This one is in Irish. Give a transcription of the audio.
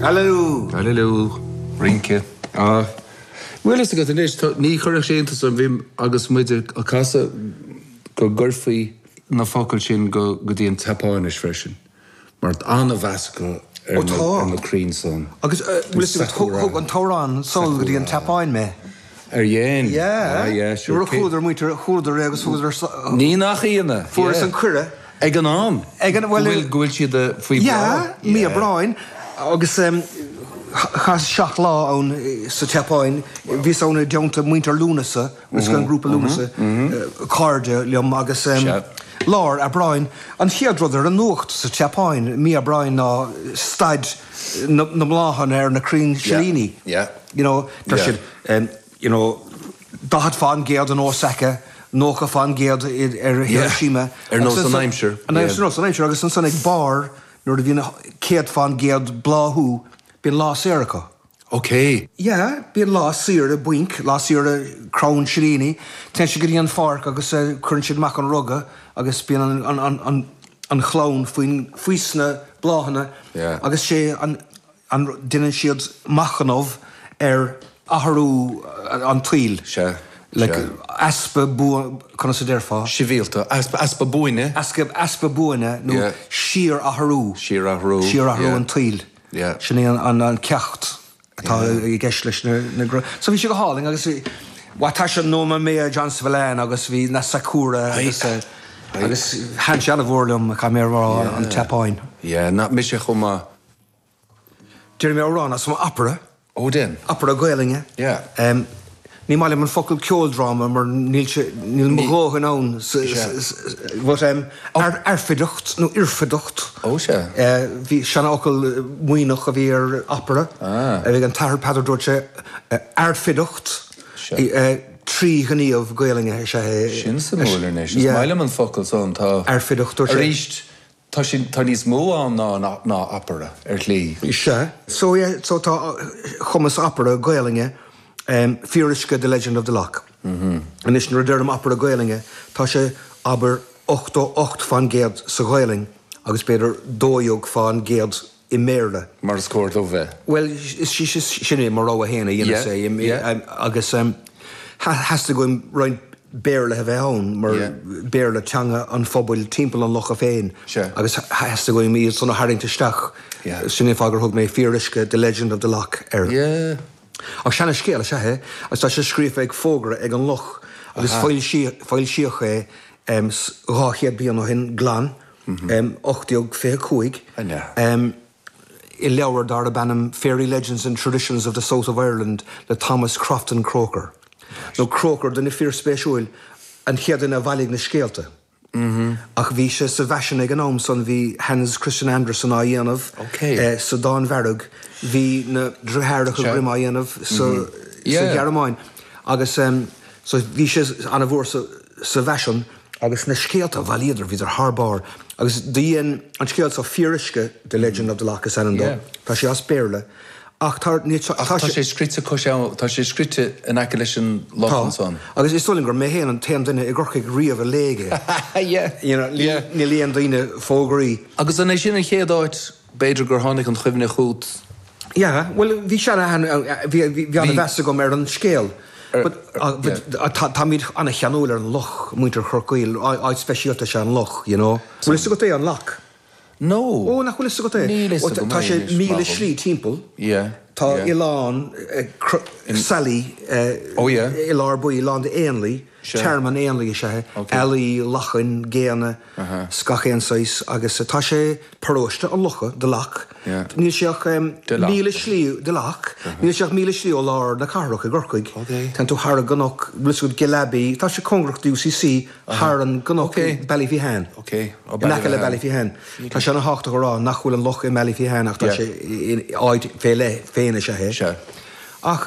Aililiú! Aililiú! Rince! Ah. Bhfuil fhios agat anois, ní chuirfeadh sé iontas orm, abair, agus muid ag casadh, go gcuirfí na focail sin go dtí an tSeapáinis freisin, mar tá an-mheas acu ar na crainn san. Ó tá. Agus bhfuil fhios agat, thug an t-amhrán Sol go dtí an tSeapáin mé. Ar dhein? Yeah. Ah, yeah, sure. Nuair a chualadar, muintir, chualadar é agus thugadar, Ní nach ionadh, fuaireas an cuireadh. Ag an am, Ag an, bhuel, go bhfuil, go bhfuil siad faoi bhláth. Yeah, Mí Aibreáin agus chaitheas seacht lá ann sa tSeapáin, bhíos ann i dteannta muintir Lúnasa, bhíos an grúpa Lúnasa, cairde liom agus lár Aibreáin, an chéad rud ar an nuacht sa tSeapáin, Mí Aibreáin ná staid na mbláthanna ar na crainn silíní. Yeah, yeah. you know tá siad em you know 40 fán gcéad in Osaka, 90 fán gcéad in Hiroshima, ar nós an aimsir, an aimsir, nós an aimsir agus ansan ag barr nuair a bhíonn 100 fán gcéad bláthú bíonn lá saor acu. Okay. Yeah, bíonn lá saoire bainc, lá saoire crann silíní, téann siad go dtí an pháirc agus eh cuireann siad amach an ruga agus bíonn an, an, an, an, an chlann faoin, faoi sna bláthanna agus is é an, an deineann siad machnamh ar athrú an tsaoil, like, easpa buan, conas a déarfá? síorathrú, easpa, easpa buaine. easpa, easpa buaine nó síorathrú, síorathrú, síorathrú an tsaoil. Yeah. Sin é an ceacht atá i gceist leis na, na gr. So bhí sé go hálainn agus bhai, tá sé in onóir Mayor John Spillane agus bhí na Sakura agus a, agus thaitn sé an-mhór liom, caithfidh mé a rá, an tSeapáin. Yeah, na, mise chomh maith. Déarfaidh mé amhrán as an opera. Ó dein. Opera Gaolainne. Yeah. Ní maith liom an focal ceoldráma mar níl sé, níl mo dhóthain ann san, but airfideacht nó oirfideacht. Oh sea. Ba sheanfhocal Muimhneach a bhí ar opera. Ah. Bhí an tAthair Peadar dúirt sé airfideacht trí ghníomh Gaolainne is ea é. Sin suimiúil anois. Is maith liom an focal san tá. Airfideacht dúirt sé. Aríst Tá sin, tá níos mó ann ná an, ná opera, ar shlí. Sea. So, yeah, so tá, chumas opera Gaolainne, em, fíoruisce The Legend of the Lough. Anois, nuair a deirim opera Gaolainne, tá sé, abair, ochtó ocht fán gcéad sa Ghaolainn agus b'fhéidir dó dhéag fán gcéad i mBéarla. Mar is cóir dó bheith. Bhuel, sin é, mo rogha féin a dhéanas é, agus theastaigh uaim roinnt Béarla a bheith ann, mar is é Béarla teanga an phobail timpeall an locha féin, agus theastaigh uaim iad san a tharraingt isteach, sin é fáth gur thug mé Fíor Uisce, The Legend of the Lough air. Ach seana scéal is ea é, agus tá sé scríofa ar fhógra ag an loch, agus foilsíodh é dhá chéad bliain ó shin glan. 1825, i leabhar darab ainm Fairy Legends and Traditions of the South of Ireland le Thomas Crofton Croker, nó Crócar, duine fíorspéisiúil, an chéad duine a bhailigh na scéalta. Ach bhí sé sa bhfaisean ag an am san, bhí Hans Christian Andersen á dhéanamh sa Danmhairg, bhí na Driotháracha Grimm á dhéanamh sa Ghearmáin, agus. So bhí sé ana mhór sa bhfaisean agus na scéalta a bhailíodar bhíodar thar barr agus do dhein an scéal so Fíor Uisce, The Legend of the Lough is ainm do, tá sé as Béarla ach tá sé, ach tá sé scrite cois abhann, tá sé scrite in aice leis an loch ansan. Tá agus is dóigh liom gur mé fhéin an t-aon duine i gCorcaigh riamh a léigh é, you know, ní léann daoine fógraí. Agus an é sin an chéad áit B'fhéidir gur tháinig an chuimhne chugat. Yeah, bhuel, bhí sé an, bhí ana mheas agam ar an scéal but, yeah, táimid ana cheanúil ar an loch, muintir Chorcaí, áit speisialta is ea an loch, you know. Bhfuil fhios agat é, an Lough? No. Ó, nach bhfuil fhios agat é? Níl fhios agam é anois, marbh. Tá sé míle slí timpeall. Yeah. Tá oileán, Sally, i lár baill, lán d'éanlaith. Tearmann éanlaithe is ea é, ealaí, lachain, géanna 's gach aon saghas, agus tá sé paróiste an locha, the lough, níl sé ach míle slí, the lough, níl sé ach míle slí ó lár na cathrach i gCorcaigh. Téann tú thar an gcnoc, looks good, Ghill Abbey, tá sé cóngarach do UCC, thar an gcnoc i Ballyphehane, in aice le Ballyphehane. Tá sé ana thábhachtach a rá nach bhfuil an loch i mBallyphehane ach tá sé in áit fé leith féin is ea é. Ach.